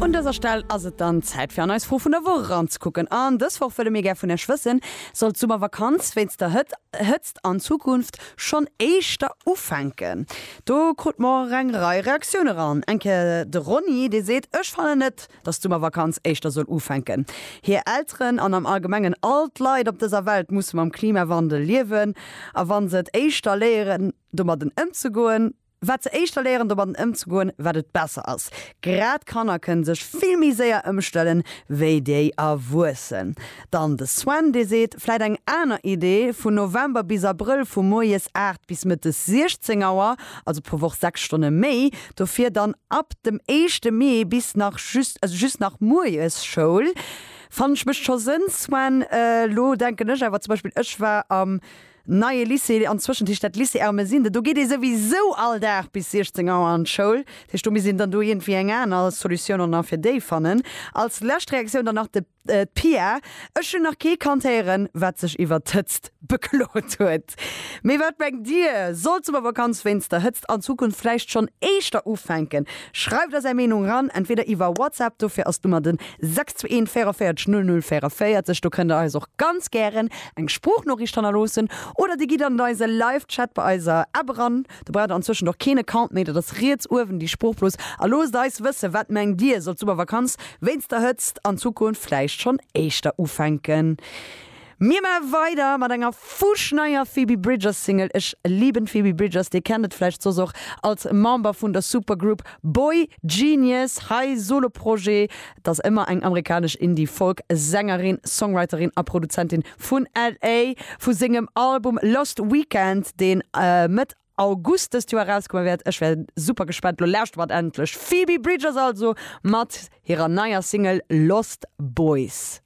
Un dëser Stell ass et dann Zäit fir an eis Fro vun der Woch eranzekucken. An dës Woch wëlle mir gär vun Iech wëssen, Soll d'Summervakanz wéinst der Hëtt Hëtzt an Zukunft schonn éischter ufänken? Do krute mer eng Rei Reaktioune ran. Eng Kéier de Ronny, dee seet, Ech fannen net, datt d'Summervakanz éischter soll ufänken. Hir Elteren an am Allgemengen all d'Leit op dëser Welt musse mam Klimawandel liewen. A wa se et éischter léieren domadden ëmzegoen, Wat se éischter léieren domatten ëmzegoen, wat et besser ass. Grad Kanner kënne sech vill méi séier ëmstellen, wéi déi Erwuessen. Dann de Sven, dee seet, vläit eng aner Idee, vun November bis Abrëll vu moies 8 bis mëttes 16 Auer, also pro Woch 6 Stonne méi, dofir dann ab dem éischte Mee bis nach just, also just nach moies Schoul. Fanne ech, mécht scho Sënn, Sven. Elo denken ech awer zum Beispill, ech war am. Neie Lycée an d'Zwëschentischt dat Lycée Ermesinde, do geet ee souwisou all Dag bis 16 Auer an d'Schoul. Dat heescht, do misst een dann do iergendwéi eng aner Solutioun och nach fir déi fannen. Als lescht Reaktioun dann nach de d'Pia, Ech hunn nach kee kannt héieren, wat sech iwwert d'Hëtzt beklot huet. Mee wat mengt Dir? Soll d'Summervakanz wéinst der Hëtzt an Zukunft vläicht schonn éischter ufänken? Schreift eis Är Meenung eran, entweder iwwer WhatsApp, dofir ass d'Nummer den 621 44 00 44. Do kënnt Der eis och ganz gären eng Sproochnooricht hannerloossen oder dir gitt an eise Live Chat bei eiser App eran. Do braucht der anzwëschent och keen Account méi, dat ass riets uewen déi Sproochblos, a loosst eis wëssen, wat mengt dir, soll d'Summervakanz wéinst der Hëtzt an Zukunft vläicht schonn éischter ufänken? Mir maache weider mat enger fuschneier Phoebe Bridgers Single, Ech lieben Phoebe Bridgers, dir kennt et vläicht soss och als Member vun der Supergroup Boygenius, hei Soloprojet, Et ass ëmmer eng amerikanesch Indie-Folk Sängerin, Songwriterin a Produzentin vun LA. Vu sengem Album Lost Weekend, deen Mëtt August dëst Joer erauskomme wäert, ech wär super gespaant, lo lauschtert mer endlech Phoebe Bridgers also mat hirer neier Single Lost Boys.